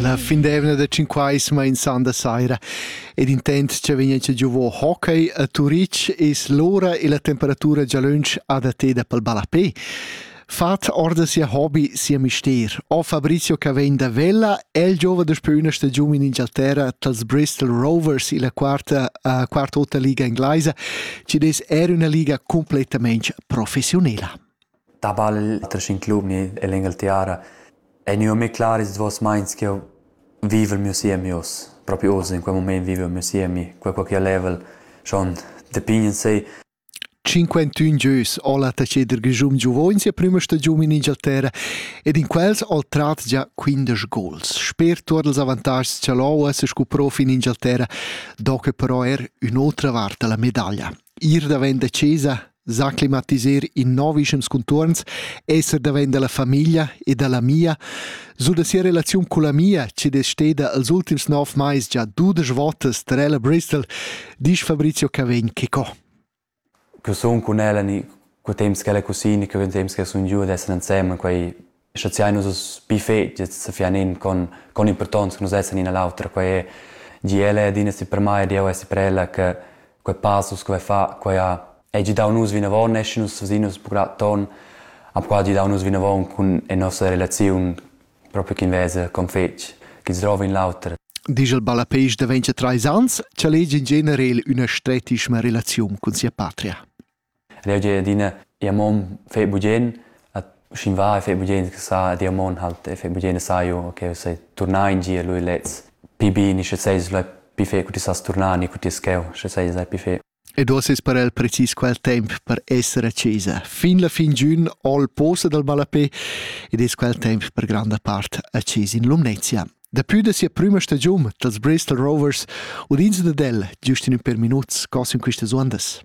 La fin d'eivna da Cinquaisma in sanda saira ed intent cha vegna giovò hockey a Turitg es l'ura e la temperatura già lönch adatteda pel ballapè. Fat orda sia hobby, sia mister. O Fabrizio che vegn da Vella, el giova daspö üna stagiun in Ingialterra tals Bristol Rovers illa quarta, uh, quarta ota liga inglaisa, ci des er üna liga completamente professionela. da ball tranter in club ni en l'Engalterra ei gnü mê clar ils duos meins ch'jeu vivel miu siemi oz. Propi oz, in quel mument vivel miu siemi, quel co ch'jeu level schon da pign in sei. Cinquantun gieus ho la taceder Grischun giuvogn sia prüma stagiun in Ingialterra ed in quels ho trat già quindesch gols. Sper tuot ils avantatgs cha l'OAS scu prof in Ingialterra do que però er ün'otra vart da la medaglia. Ir davent da chesa sa climatisar in novischems conturns, esser davent dalla famiglia e dalla mia, so da sia relaziun con la mia, che desteda als ultims nov mais già dudesch votas per ella Bristol, dice Fabrizio Cavegn che co. Che son con ella ni co temps che ella cusini, che vem temps che sun giù ad essere insieme, quei schaziai nus uss buffets sa fianin con con importanza nus essan ina l'autra quei è di ella ed ina si per mai di eu essi per ella che quei passus quei fa quei ha è gi dau nus vinavon eschi nus vasinus pura ton ha qua di dau nus vinavon cun e nossa relaziun proprio chin vesa con fetg chi drova in l'auter Digel Ballapeisch da 23 ans, cha legi in generel üna stretischma relaziun cun sia patria. Leu jeu adina jeu mon fetg bugen, sch'in va e fetg bugen sa ed jeu mon halt e fetg bugen e saiu che jeu sai turnar in gia lu e lez. Pli bini, sche seis lu pli fetg cu ti sas turnar ni cu ti es cheu, sche seis lu pli fetg. Ed uossa es per el precis quel temp per esser a chesa. Fin la fin giun ho il posa dal ballapè ed es quel temp per granda part a chesa in Lumnezia. Dapü da sia prüma stagiun dals Bristol Rovers udins dad el, giust in ün per minuts, cos in quistas uondas.